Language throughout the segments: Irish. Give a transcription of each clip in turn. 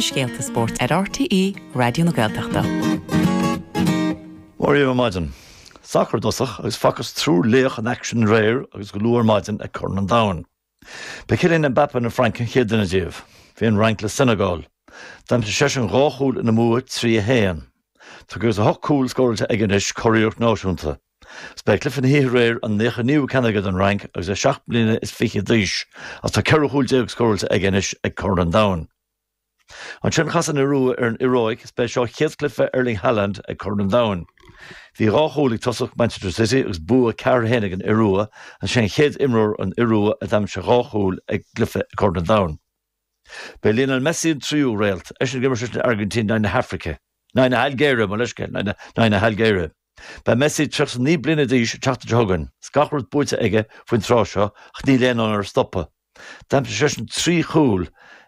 na scéalta spóirt ar RTÉ Raidió na Gaeltachta. Mora dhaoibh ar maidin. Sacar i dtosach agus facthas triúr laoch in aicsean aréir agus go luath ar maidin ag Corn an Domhain. Ba Kylian Mbappé na Fraince an chéad duine díobh. Bhí an Fhrainc le Senegal. D'aimsigh seisean dhá chúl ina mbua, 3-1. Tá 58 cúl scóráilte aige anois, curiarracht náisiúnta. Is b'é cluiche na hoíche aréir an nócha naoú ceann aige don Fhrainc agus é seacht mbliana is fiche d'aois, agus tá ceithre chúl déag scóráilte aige anois ag Corn an Domhain. Ansin chas an Iorua ar an Iaráic is ba é seo chéad cluiche Erling Haaland ag Corn an Domhain. Bhí dhá chúl ag tosach Manchester City agus bua ceathair a haon ag an Iorua, agus sé an chéad imreoir ón Iorua a d'aimsigh dhá chúl ag cluiche ag Corn an Domhain. B'é Lionel Messi an tríú réalt, eisean ag imirt leis an Airgintín in aghaidh na hAifrice. in aghaidh na hAilgéire, mo leithscéal, in aghaidh na hAilgéire. Beidh Messi 39 bliana d'aois an tseachtain seo chugainn. Is gach rud buaite aige faoin tráth seo ach níl aon fhonn air stopadh. D'aimsigh seisean trí chúl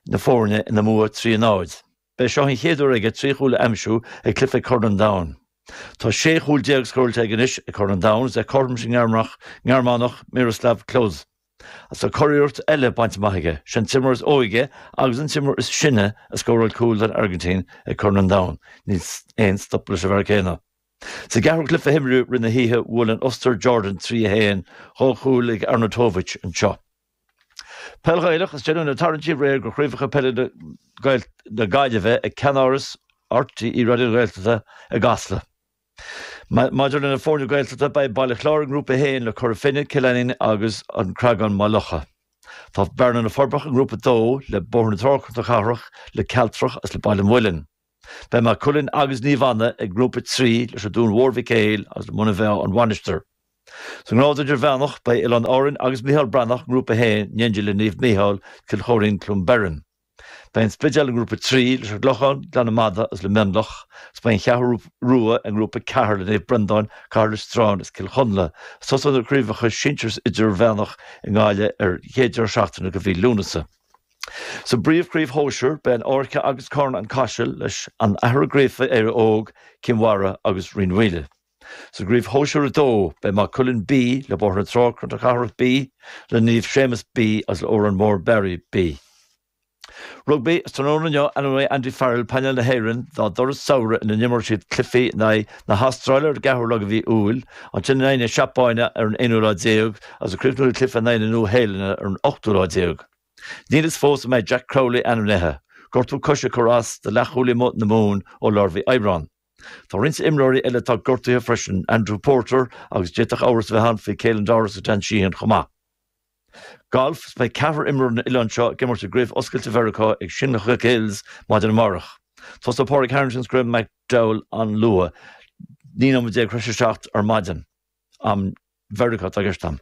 na foirne ina mbua 3-0. B'é seo an chéad uair aige trí chúl a aimsiú ag cluiche ag Corn an Domhain. Tá 16 chúl scóráilte aige anois ag Corn an Domhain. Is é cothrom leis an nGearmánach Miroslav Klose. Tá curiarracht eile bainte amach aige, sé an t-imreoir is óige agus an t-imreoir is sine a scóráil cúl don Airgintín ag Corn an Domhain, níl aon stop leis an bhfear céanna. Sa gceathrú cluiche a himríodh i rith na hoíche bhuail an Ostair Jordan 3 1, dhá chúl ag Arnautovic anseo. Peil Ghaelach, Is déanadh na tarraingtí aréir do Chraobhacha Peile na Gaillimhe ag ceannáras RTÉ Raidió na Gaeltachta i gCasla. Maidir le na foirne Gaeltachta, beidh Baile Chláir i nGrúpa 1 le Cora Finne, Cill Ainnín agus An Creagán-Maigh Locha. Tá Bearna-Na Forbacha i nGrúpa 2 le Bóthar na Trá-Cnoc na Cathrach, le Cealtrach agus le Baile an Mhuilinn. Beidh Maigh Cuilinn agus Naomh Anna i nGrúpa 3 leis an Dún Mhór Mhic Éil agus le Muine Mheá-An Mhainistir. Sa nGrád Idirmheánach, beidh Oileáin Árann agus Micheál Breathnach i nGrúpa 1 in éindí le Naomh Micheál, Cill Choirín-Cluain Bheirn. Beidh an Spidéal i nGrúpa 3 leis an gClochán, Gleann na Madadh agus le Mionlach, agus beidh an Cheathrú Rua i nGrúpa 4 le Naomh Breandán, Cathair Loistreáin agus Cill Chonla. Tosóidh na Craobhacha Sinsir is Idirmheánach i nGaillimh ar an chéad deireadh seachtaine de mhí Lúnasa. Sa bPríomhchraobh Shóisir, beidh an Fhairche agus Carna-Caiseal leis An Athair Gríofa-Éire Óg, Cinn Mhara agus Rinn Mhaoile. Sa gCraobh Shóisir 2, beidh Maigh Cuilinn B le Bóthar na Trá-Cnoc na Cathrach B le Naomh Séamus B agus le Órán Mór-Meáraí B. Rugbaí, Is tráthnóna inniu a ainmneoidh Andy Farrell painéal na hÉireann dá dturas samhraidh ina n-imreoidh siad cluichí in aghaidh na hAstráile ar an gceathrú lá de mhí Iúil, ansin in aghaidh na Seapáine ar an aonú lá déag agus ag críochnú le cluiche in aghaidh na Nua-Shéalainne ar an ochtú lá déag. Níl a fhios fós an mbeidh Jack Crowley ainmnithe, gortú coise ag cur as do leathchúlaí na Mumhan ó lár mhí Aibreáin. Tá roinnt imreoirí eile atá gortaithe freisin, Andrew Porter agus d'fhéadfadh amhras a bheith ann faoi Caelan Doris agus Dan Sheehan chomh maith. Galf, Beidh ceathrar imreoirí ón oileán seo ag imirt i gCraobh Oscailte Mheiriceá ag Shinnecock Hills maidin amárach. Tosóidh Pádraig Harrington agus Graham McDowell an-luath, 19 nóiméad th'éis a 7 ar maidin. am Mheiriceá atá i gceist agam.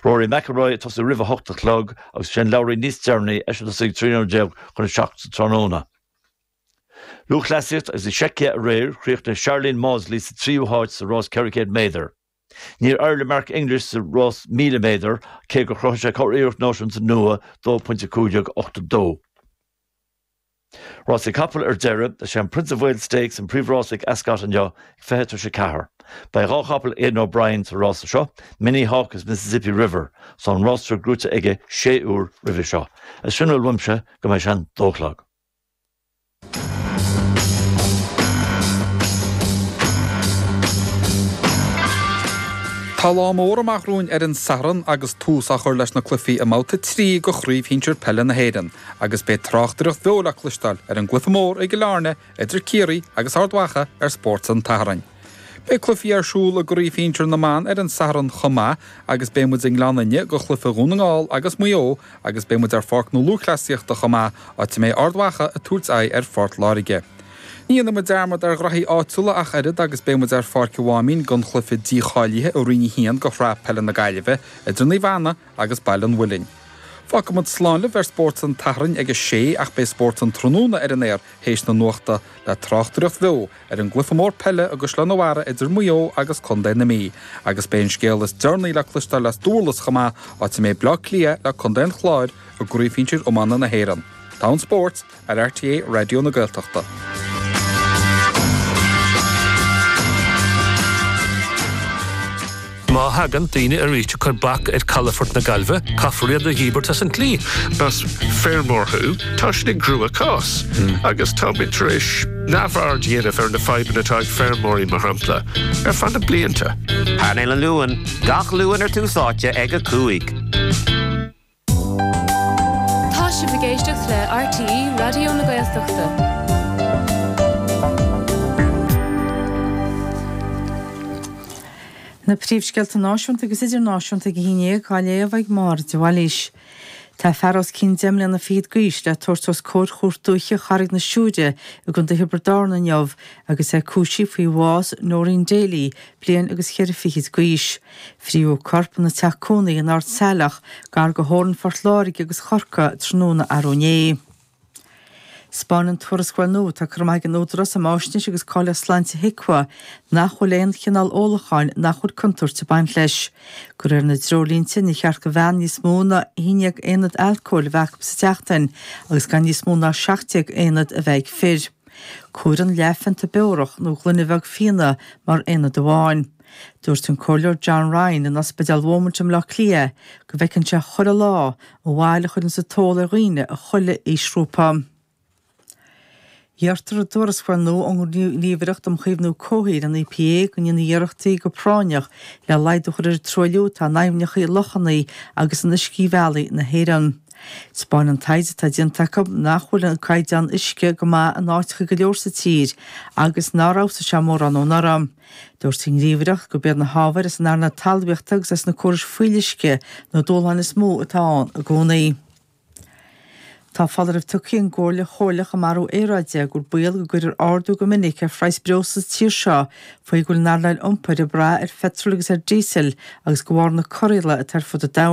Rory McIlroy ag tosú roimh a hocht a chlog agus Shane Lowry níos deireanaí, eisean ag tosú ag trí nóiméad déag chun a seacht sa tráthnóna. Lúthchleasaíocht agus i Seicia aréir, chríochnaigh Sharlene Mawdsley sa tríú háit sa rás 400 méadar. Níor éirigh le Mark English sa rás 1000 méadar, cé gur chruthaigh sé curiarracht náisiúnta nua, 2.15.82. Rásaí capall ar deireadh. Is é an Prince of Wales Stakes an príomhrás ag Ascot inniu ag fiche tar éis a ceathair. Beidh dhá chapall Aidan O'Brien sa rás seo, Minnie Hauk agus Mississippi River. Tá an rása gnóite aige sé uair roimhe seo. Sin a bhfuil uaimse go mbeidh sé an dó a chlog. Tá lá mór amach romhainn ar an Satharn agus tús á chur leis na cluichí i mBabhta 3 de Chraobh Shinsir Peile na hÉireann. agus beidh tráchtaireacht bheo le cloisteáil ar an gCluiche Mór i gCill Airne idir Ciarraí agus Ard Mhacha ar Spórt an tSathairn. Beidh cluichí ar siúl i gCraobh Shinsir na mban ar an Satharn chomh maith agus beidh muid i nGleann Fhinne do chluiche Dhún na nGall agus Maigh Eo agus beidh muid ar Pháirc na Lúthchleasaíochta chomh maith, áit a mbeidh Ard Mhacha ag tabhairt aghaidh ar Phort Láirge. Ní dhéanfaidh muid dearmad ar ghnoithí áitiúla ach oiread agus beidh muid ar Pháirc an Mháimín don chluiche dícháilithe ó Roinn 1 de Shraith Peile na Gaillimhe idir Naomh Anna agus Baile an Mhuilinn. Fágfaidh muid slán libh ar Spórt an tSathairn ag a sé ach beidh Spórt an Tráthnóna ar an aer théis na nuachta le tráchtaireacht bheo ar an gcluiche mór peile i gCaisleán a' Bharraigh idir Maigh Eo agus Contae na Mí agus beidh an scéal is deireanaí le cloisteáil as Dúrlas chomh maith, áit a mbeidh Uíbh Fhailí ag plé le Contae an Chláir i gCraobh Shinsir Iomána na hÉireann. Togha an spóirt! ar RTÉ Raidió na Gaeltachta. Má thagann daoine aríst ag cur bac ar calafort na Gaillmhe, caithfear iad a dhíbirt as an tslí. Más feirmeoir thú, tá sinn i gcruachás, agus táimid tar éis neamhaird a dhéanamh ar na fadhbanna atá ag feirmeoirí, mar shampla, ar feadh na blianta. Painéal an Luain, gach Luan ar Tús Áite ag a cúig. Tá sibh ag éisteacht le RTÉ Raidió na Gaeltachta. Na príomhscéalta náisiúnta agus idirnáisiúnta ag a haon déag á léamh ag Máire de Bhailís. Tá fear os cionn deich mbliana fichead d'aois le tabhairt os comhair Chúirt Dúiche Charraig na Siúire i gContae Thiobraid Árann inniu agus é cúisithe faoi bhás Noreen Daly bliain agus cheithre fichid d'aois. Frítheadh corp ina teach cónaí in Ard Saileach, gar do theorainn Phort Láirge agus Chorcaí, tráthnóna arú inné. 'Spáineann tuarascáil nua atá curtha amach ag an Údarás um Fháisnéis agus Cáilíocht Sláinte, HIQA, nach bhfuil aon chineál ólacháin nach bhfuil contúirt ag baint leis. De réir na dtreoirlínte níor cheart do bhean níos mó ná 11 aonad alcóil a bheith acu sa tseachtain agus gan níos mó ná 17 aonad a bheith ag fir. Comhairtear leathphionta beorach nó gloine bheag fíona mar aonad amháin. Dúirt an Comhairleoir John Ryan in Ospidéal Beaumont i mBaile Átha Cliath go bhfeiceann sé chuile lá an bhail a chuireann an t-ól ar dhaoine as chuile aoisghrúpa. Iarrtar i dtuarascáil nua ón nGníomhaireacht um Chaomhnú Comhshaoil, an EPA, go ndéanfaí iarrachtaí go práinneach le laghdú a chur ar an truailliú atá in aibhneacha, lochanna agus in uiscebhealaí na hÉireann. 'Spáin an taighde atá déanta acu nach bhfuil an caighdeán uisce go maith in áiteacha go leor sa tír agus nár fheabhsaigh sé mórán anuraidh. Dúirt an Ghníomhaireacht gurb iad na hábhair as an earnáil talmhaíochta agus as na córais fuíolluisce na dúshláin is mó atá ann i gcónaí. Tá foláireamh tugtha ag an gComhairle Chomhairleach um Athrú Aeráide gur baol go gcuirfear ardú go minic ar phraghas breosla sa tír seo faoi go bhfuil an earnáil iompair ag brath ar pheitreal agus ar dhíosal agus de bharr na corraíola atá ar fud an domhain.